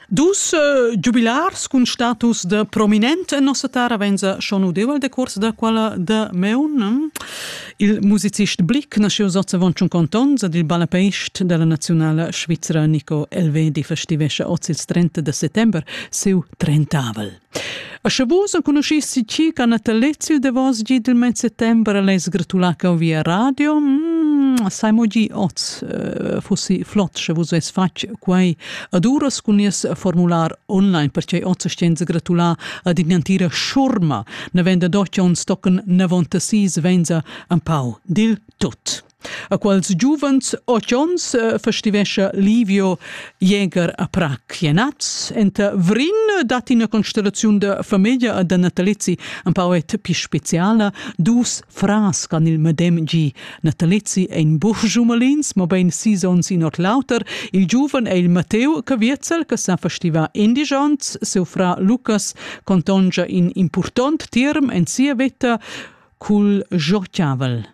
Dus uh, giubilars cun status de prominent en nossa terra venza schon udevol de curs da quella de meun. Hm? Il musicist Blick nasceu sozzavon un conton ad il ballapeist della nazionala svizzera Nico Elvedi festivesce oz il 30 de settember seu trentavel. A sche vus enconuschissi ti ca natalets il davos gi del mes settembre less gratular cau via radio, mm, sai mo gi oz uh, fossi flot sche vus ves fatg quei ad uras cun nies formular online, perché oz sten gratular ad innantira schurma, ne venda doch uns tocken nevontasis venza un pau dil tut. a quals giuvens otg onns eh, festivescha Livio Jäger a Prag. Jenaz, enta Vrin dat ina constellaziun da famiglia da natalizzi un pauet più speciala, dus fras can il medem gi. Natalizzi è in buch jumalins, ma ben sis onns in ot l'auter. Il giuven è il Matteo Caviezel, che sa festiva indigents, seu fra Lucas contongia in important tirm en sia vita cul jochiavel.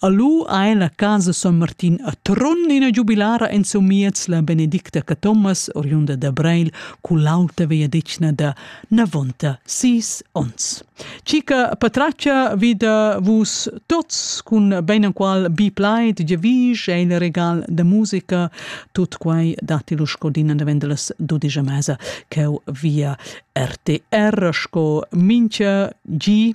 A lu ein la casa Son Martin a Trun ina giubilara en Somiez la Benedicta Cathomas, oriunda da Breil, cu l'auta vegliadetgna da navonta sis onns. Cica patraccia vi da vus tots cun ben enqual bi plaid, giavisch e il regal da musica, tut quai dati lu sco din davent las 12 mesa cheu via RTR sco mincha gi